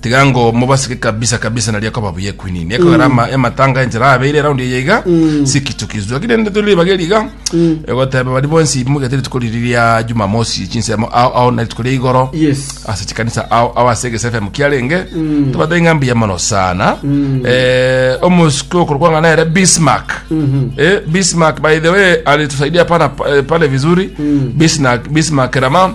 tiga ngo mobasike kabisa kabisa naria koba buya ekwinini ekogera ama- ematanga enchera abeire raundi eye iga sikichukizwa lakini rende tore ribaga eri iga egoteba bari bonsi mbugete rituko riri ria jumamosi chinsemo ao ao na rituko ria igoro Yes. ase chikanisa ao ao ase egese fm kiarenge tobate ng'a mbuya mono sana Eh, omosiko okorokwana nere bismark Eh, bismark by the way alitusaidia pana eh, pale vizuri bismark bismark rama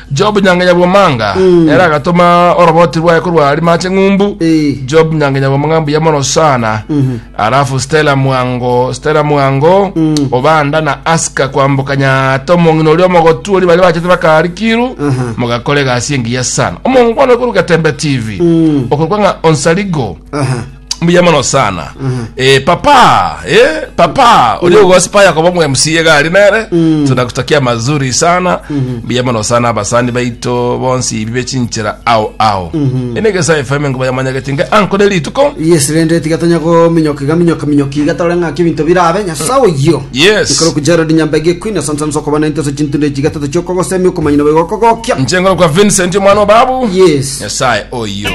Job Nyangenyabwomanga ere agatoma oroboti rwaye korwa Arimache Ng'umbu. Eh. Job Nyangenyabwomanga mbuya mono sana. Alafu Stella Mwango, Stella Mwango, Obanda na Aska kwamboka Nyata omong'ina oria omogotu oria baria bachete bakarikiru Aha. mogakora egasi engiya sana. Omongwana okoruga Tembe TV. Okorwa ng'a Onsaligo. Aha. mbuya mono sana eh, papa eh, papa uli ugosipa yakobo mwe mca gari nere tunakutakia mazuri sana mbuya mono sana abasani baito bonsi ibi bechinchira ao ao enegesa fm ngo bayamanyagete nge anko ne rituko yes rende tiga tonya gominyoka iga minyoka minyoka iga tore ng'aki ebinto birabe nyasae oyio Yes. ikoro kujerodi nyambege queen asante sana sokobana into se chintu ndechiga tete chioko gosemi okomanyina bwe gokogokia nchengoro kwa vincent omwana wa babu yes nyasaye oyo